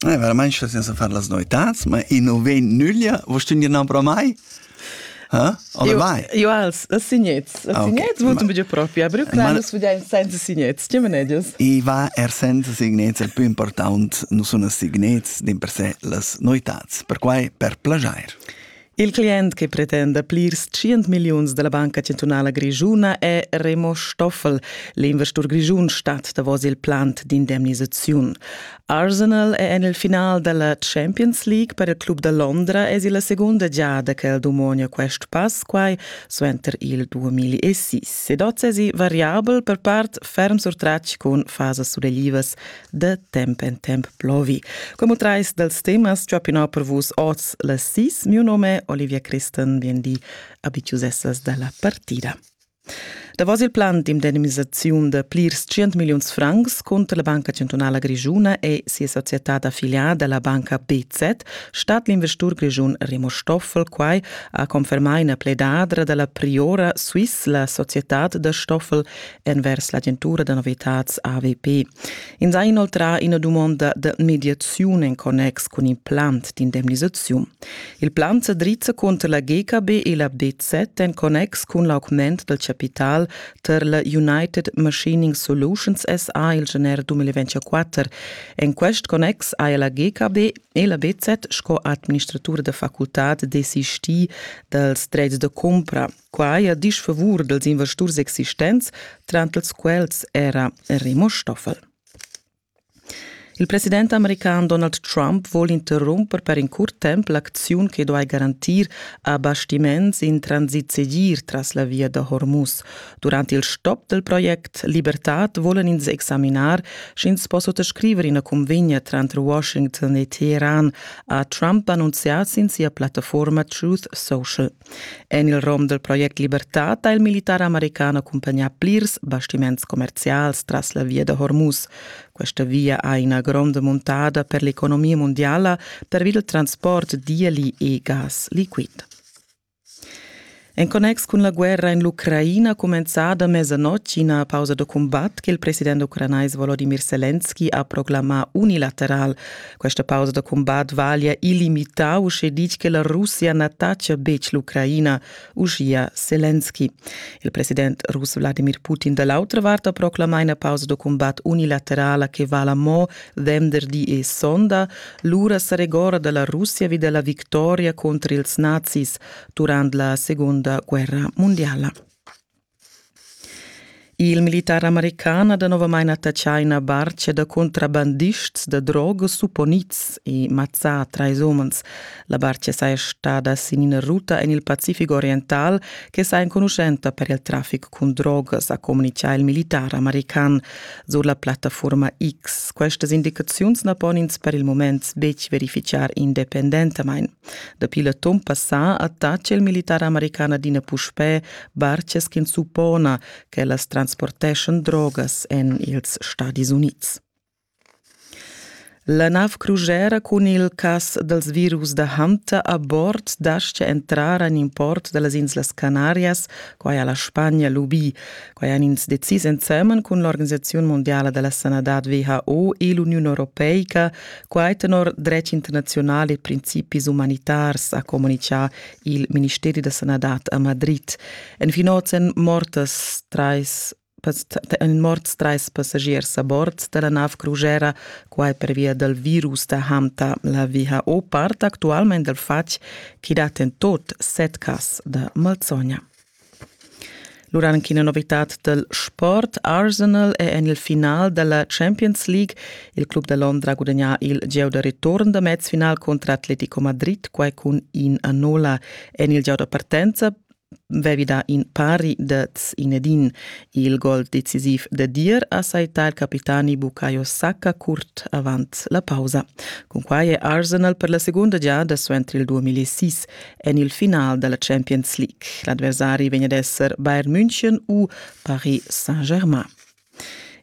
Veramaing stess ins a far las noetats, ma i nu vegn nüglia. Vust ün gniambra mai? Oder mai? Jo als signets. Signets votan buca propi, aber qua nus vedein senza signets, tgi manedias? I va er senza signets, il più important nu sun as signets din per se las noetats, perquai per plajair. Il client che pretenda plirs tschient milliuns dalla Banca Centrala Grischuna è Remo Stoffel. L'investur grischun stat davos il plant d'indemnisaziun. Arsenal è en il final dalla Champions League per il club da Londra es la segunda giada che el dumonia quest pass quai suenter il 2006. Ed oz es variabel per part ferm surtratg cun fasas suleglivas da temp en temp plovi. Como trais dels temas chopinò per vus oz las sis. Mio nome Olivia Christen vien di abitiusessas dalla partida. Davos il plan d'indemnisaziun de plirs 100 milliuns francs conter la Banca Centrala Grigiuna e sia società d'affiliate la Banca BZ stat l'investur grigiun Remo Stoffel quai a confermar ina pledadra della priora Swiss la società da Stoffel envers l'agentura da novitads AVP. Ins ha inoltrà ina dumonda da mediaziun en connex cun il plan d'indemnisaziun. Il plan sa drizza cunter la GKB e la BZ en connex cun l'augment dal capital tar la United Machining Solutions SA il gener 2024. En quest connex ha la GKB e la BZ sco administratura da facultad desistì dals dretgs da cumpra. Qua haja disch favur dels investurs existents, trantels quels era Remo Stoffel. Il president american Donald Trump vuol interrumper per in curt temp l'acziun che duai garantir abastiments in transit segir tras la via da Hormuz. Durant il stop del project Libertad vollen ins examinar, sch'ins possa scriver ina convegna tranter Washington e Teheran, ha Trump annunziato in sia plattaforma Truth Social. En il rom dal project Libertad ha il militar american accumpagnà plirs bastiments commerzials tras la via da Hormuz. Questa via ha ina gronda muntada per l'economia mondiala pervi dal transport d'ieli e gas liquid. En connex cun la guerra en l'Ucraina cumenzada mezzanotte ina pausa da cumbat che il president ucranais Volodymyr Zelensky ha proclamà unilateral. Questa pausa da combat vaglia illimità uschè ditg che la Russia na tacia betg l'Ucraina, uschia Zelensky. Il president russ Vladimir Putin da l'autra vart ha proclamà ina pausa da combat unilaterala che vala mo venderdi e sonda. Lura sa regora da la Russia vi da la victoria contro ils nazis durant la seconda guerra mondiala. Il militar american ha danovamain attaccà ina bartga da contrabandists da drogas supponids e mazzà trais umens. La bartga saja stada sin ina ruta en il Pacific oriental che saja enconuschenta per il traffic cun drogas, ha communitgà il militar american sur la plattaforma X. Questas indicaziuns na pon ins per il mument betg verifitgar independentamain. Dapi l'atun passà attaccia il militar american adina puspè bartgas ch'ins suppona ch'ellas transporteschan drogas en ils Stadis Unids. La nav crujera cun il cas dals virus da Hunter a bord dascha entrar en import da las Inslas Canarias, quai ha la Spagna lubì. Quai han ins decis ensemen cun l'Organisaziun mondiala da la sanadad WHO e l'Uniun Europeica, quai tenor dretg internaziunal e principis umanitars, ha communitgà il Ministeri da sanadad a Madrid. En fin oz èn mortas trais en morts trais passagiers a bord da la nav crugera, quai pervia dal virus da Hamta. La WHO part actualment dal fatg ch'i dat en tot set cas da malsogna. Lura anc ina novitad dal sport. Arsenal è en il final da la Champions League. Il club da Londra ha gudagnà il gieu da return da mezfinal contro Atletico Madrid, quai cun in a nolla. En il gieu da partenza vevi dà in pari dets inedin. Il gol decisiv da dir ha saità il capitani Bukayo Saka curt avant la pausa. Cunquai è Arsenal per la segunda giada suenter il 2006 en il final della Champions League. L'adversari vegn ad esser Bayern München u Paris Saint-Germain.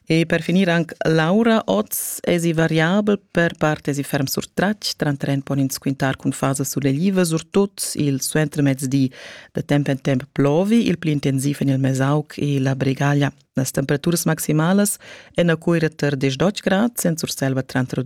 E per finir anche Laura oz esi variabel per part esi ferm surtratg, tra tren pon ins quintar cun fasa sulegliva, surtut il suentermezdi da temp en temp plovi, il pli intensiv en il Mesauc e la Bregaglia. Las temperaturas maximalas en a Cuira ter 10 grad, sen Surselva tra 2